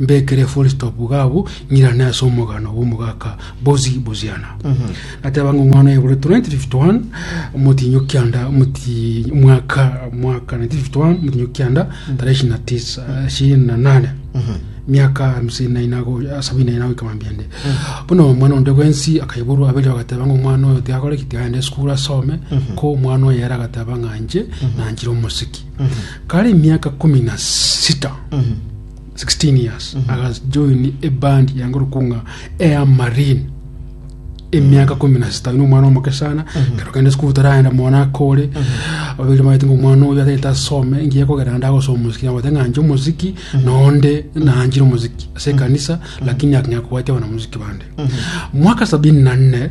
Mbekere full stop iga abwo, ng'irane ase omogano bw'omogaka Bozi Boziana. Nateba ng'a omwana oye bore 1951, omotinyi o kianda, omoti- mwaka, mwaka 1951, omotinyi o kianda, tarehe ishirini na tisa, ishirini na nane. Miaka hamsini na ina go- ah, sabini na ina goika mambende. Bono omwana onde bwensi akaiborwa aberia bagateba ng'a omwana oyo tiakore ki, tiagenda esukuru asome, ko omwana oyo ere agateba ng'a inche nanchire omosiki. kare emiaka komi na sita 16 years agajoini ebandi yangorokwa ng'a air marine emiaka komi na sita nomwana omoke sana kero kende sukuru taraenda mwana akore ababere bamanyete ng'a omwana oyo atagete asome engiya ekogera naende agosoma omosiki nabaete ng'a nche omosiki nonde nanchire omosiki ase ekanisa lakini aking'akobwatia abanamosiki bande mwaka sabini na nne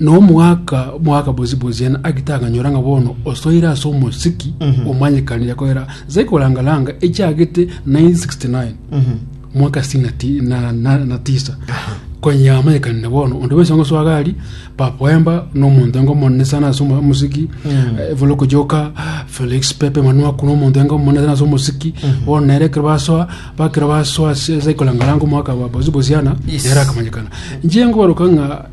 Na omogaka mogaka bosibosio yaani agite akanyora ng'a bono osoire ase omosiki omanyekanire koera nse korangaranga echiagete 969 mwaka sitini na ti- na- na- na tisa konya yamanyekanire bono onde bwensi ongosoaga ari papoemba nomonto enga omonene sana ase omo- omosiki eh, voloko joka felix pepe manuaku nomonto enga omonene sana ase omosiki bono nere ekero basoa bakero basoa ase ase korangaranga omogaka wa bosibosiana Yes. nere akamanyekana inche ngooroka ng'a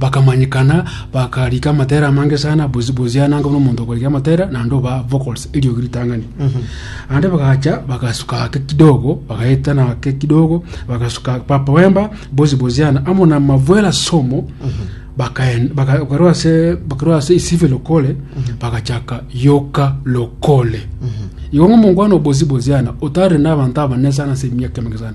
Bakamanyekana, bakarika amatera amange sana, bosi bosi ane anga buna omonto okorika amatera, naende oba vocals, eriogi ritang'ani. Naende bagacha, bagasuka ake kidogo, bagaetana ake kidogo, bagasuka papa wemba, bosi bosi ane, amo na mavwera somo, bakaen- baka- bakarwa ase bakarwa ase isife lokole, bagachaka yoka lokole. Igo ng'omongwana obosi bosi ane, otare na abanto abanene sana ase emiaka emenge sana,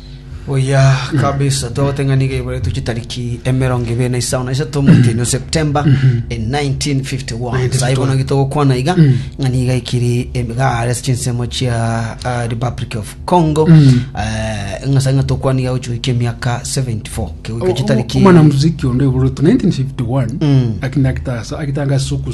Buya kabisa togote ng'a nigo eiboretwe chitariki emerongo ibere na isano na isato omwaka ino september e 1951 sai bono gitogokwana iga ng'a niga ikiri emigare ase chinsemo chia ah, republic of congo Eh, ng'a sai ng'a tokwana iga gochigaikia emiaka 74 kegoika chitariki omwana muziki onde oborotwe 1951 Mm. akina akitasa akitanga suku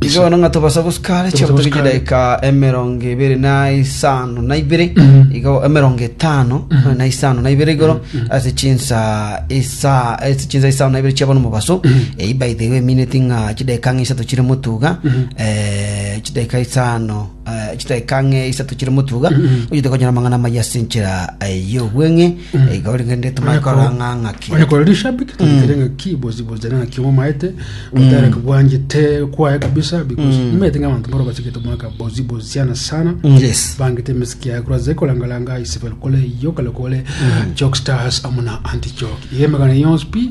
Igo bono ng'a tobasa gosika are Tobasa chiagotoki gosika are. chidaika emerongo ebere na isano na ibere igo emerongo etano na isano na ibere igoro ase chinsa isa ase chinsa isano na ibere chia bono mobaso eyio by the way emineti ng'a chidaika ng'a isato chire motuga eh, chidaika isano Chidaeka ng'a isato chire motuga onchete konyora amang'ana amayia ase enchera y'obweng'e iga origende tomanye korora ng'a ng'aki onye kore rishabiki tondikere ng'aki bosi bosi jana ng'aki omomaete otare kobwanjete kwaye kabisa because nimanyete ng'a abanto mboro bachigete omwaka bosi bosi sana sana Mm, yes bangete emisiki yaye kuraze korangaranga isibel kole iyo kale kole jock stars amo na anti jock iga emegano yonsi pi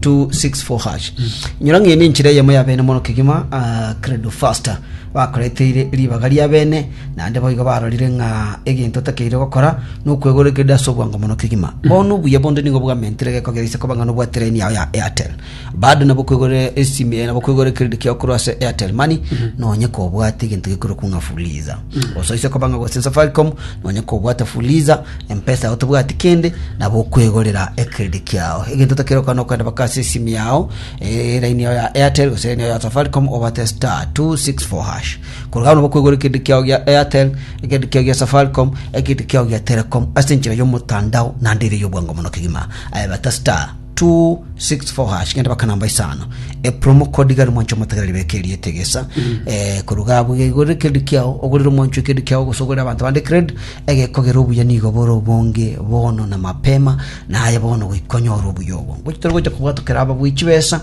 264 nyora ng'ende enchera eyemo ya bene mono kegima ah, credo faster bakoreteire ribaga ria bene naende boigo barorire ng'a egento takeire gokora nokwegorekerera ase obwango mono kegima bono obuya bonde nigo bwamentire geko geise koba ng'a nobwa tereni yao ya airtel bado nabo kwegorera esimi eh, nabo kwegorekereri kiao korwa ase airtel money nonye kobwate egento gekorokwa ng'a fuliza Gose oise kobang'a gochia Safaricom nonye kobwate Fuliza, M-pesa yao tobwati kende nabo okwegorera ecredit kiao. Egento otakire gokora nokogenda baka ase esimi yao eh, line yao ya Airtel gose line yao ya Safaricom obwate star 264 hash. Korwa agwo nabo okwegora ecredit kiao gia Airtel, ecredit kiao gia Safaricom, ecredit kiao gia Telecom ase enchera yomotandao naende ere eyobwango mono kegima. Aye bata star 264 hash genda baka namba isano e promo code gari mwancho motagera ribeka eri etegesa eh koruga abu igore kedi kiao ogorire mwancho kedi kiao gosogorera abantu bande cred egekogera obuya nigo bore obonge bono na mapema naye bono goikonya oro obuya obo gochitoro gocha kubwatokera aba bwichi besa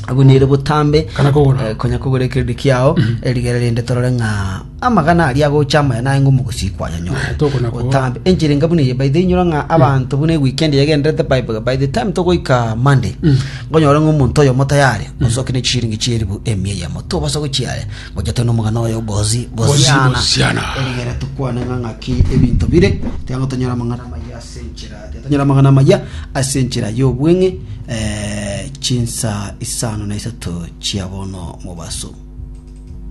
abwo nere botambe Kana kogora. eh, konya kogora ekeredi kiao eh, rigere rende torore ng'a amagana aria agocha amaya naye ng'o mogosii kwayanyore Tokona koa. otambe enchera enga buna eye by the way inyora ng'a abanto buna weekend yagenderete by, by the time togoika monday ngonyore ng'a omonto oyomo tayari osoke ne chishiringi chieribu emia eyemo tobasa gochiaya gocha tene omogana oyo gozi Gozi, goziana gosiana. erigere tukwane ng'a ng'aki ebinto bire tiga tonyore amang'ana amaya ase enchera Tonyore amang'ana amaya ase enchera y'obweng'e eh, chinsa isano na isato chia bono mobaso.